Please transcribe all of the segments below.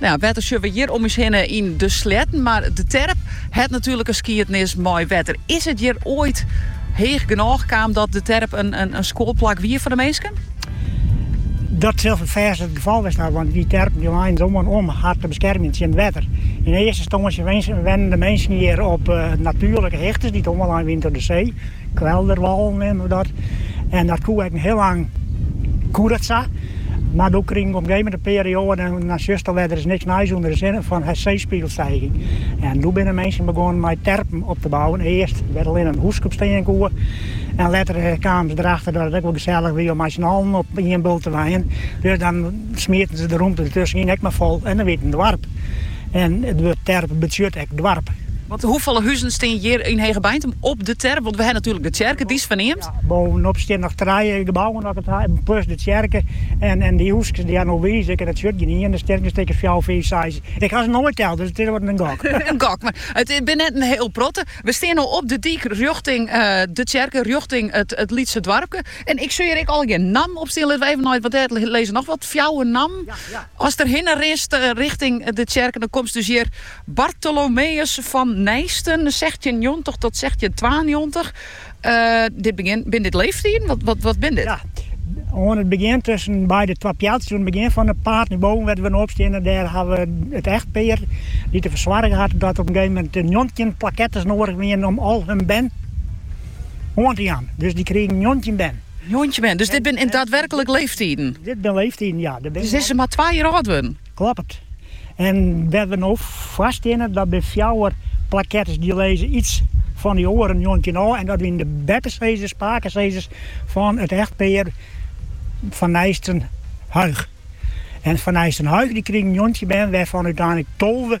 Nou, wetter sjoch we hjir om ús hinne yn de sleatten, mar de terp hat natuerlik in skiednis mei wetter. Is it hjir oait heech genôch kaam dat de terp in skuolplak wie foar de minsken? Dat sil fêst it gefal west ha, want dy terpen dy leinen se oan om har te beskermjen tsjin wetter. Yn earste ynstânsje wennen de minsken hjir op natuerlike hichtes dy't oanlein wiene troch de see. Kwelderwâlen neamden we dat. En dat koe ek hiel lang koe dat sa. Mar doe krige op in gegeven moment in perioade, dan sjochst alwer der is niks nijs ûnder de sinne, fan seespiegelstijging. En doe binne minsken begûn mei terpen op te bouwen. Earst wêr't allinnich in hûsk op stean koe. En letter kamen se derachter dat it ek wol gesellich wie om mei syn allen op ien bult te wenjen. Dus dan smieten se de rûmte dertusken yn ek mar fol en dan wie it in doarp. En it wurd terp betsjut ek doarp. Want hoefolle huzen stean hjir yn Hegebeintum op de terp? Want we ha natuerlik de tsjerke, dy is ferneamd. Bovenop stean noch trije gebouwen as ik it ha, plus de tsjerke. En dy hûskes dy't dêr, no wize ik, en dat sjut gjin ien, der stean ek in stik of fjouwer, fiif, seis. Ik ha se noait teld, dus it is wat in gok. In gok, mar it binne net in hiel protte. We stean no op de dyk rjochting de tsjerke, rjochting it lytse doarpke. En ik sjoch hjir ek allegear nammen op stean. Litte we even nei it wat dêr lizze. Noch wat fjouwer nammen. Ast der hinne rinst richting de tsjerke, dan komst dus hjir Bartholomeus fan Nijsten, sechstjinnjoggentich tot sechstjintwaennjoggentich. Dit begjin, binne dit leefstiden? Wat, wat binne dit? Ja, oan it begjin tusken by de twa pealtsjes, oan it begjin fan de paad nei boven wêr't we no op steane, dêr ha we it echtpear dy't derfoar soarge hat, dat op in gegeven moment njoggentjin plakettes noadich wiene om al hun bern oan te jaan. Dus dy krigen njoggentjin bern. Njoggentjin bern, dus dit binne dan daadwerklik leeftiden? Dit binne leeftiden, ja. Dus is se mar twa jier âld wurden? Kloppet. En wêr't we no foar steane, dat binne fjouwer plakettes dy't lizze iets fan dy oare njoggentjin ôf. En dat wiene de beppesizzers, pakesizzers, fan it echtpear Van Nijsten-Huygh. En Van Nijsten-Huygh dy krigen njoggentjin bern, wêrfan úteinlik tolve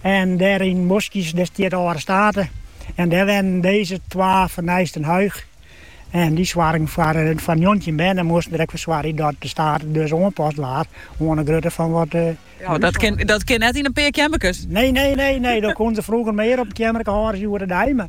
En dêr yn 'e boskjes, dêr stiet de âlde state. En dêr wennen deze twa Van Nijsten-Huygh. En dy soargen foar foar njoggentjin bern en moasten der ek foar soargjen dat de state dus oanpast waard oan de grutte fan wat de. Jo, dat kin, dat kin net yn in pear keammerkes. Nee, nee, nee, nee, dan koenen se froeger mear op in keammerke hâlde as hjoed-de-dei, mar.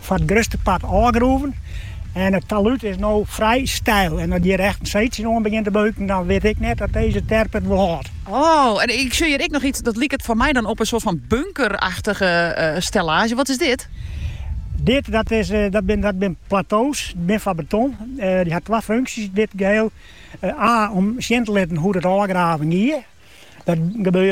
foar it grutste part ôfgroeven en it talúd is no frij steil. En as hjir echt in seetsje oan begjint te beuken, dan wit ik net oft dizze terp it wol hâldt. Oh, en ik sjoch hjir ek noch iets, dat liket foar my dan op in soart fan bunkerachtige stellaazje. Wat is dit? Dit, dat is, dat bin, dat bin plato's, dy bin fan beton. Dy hat twa funksjes dit geheel. A, om sjen te litten hoe't it ôfgraven gie. Dat gebeurde.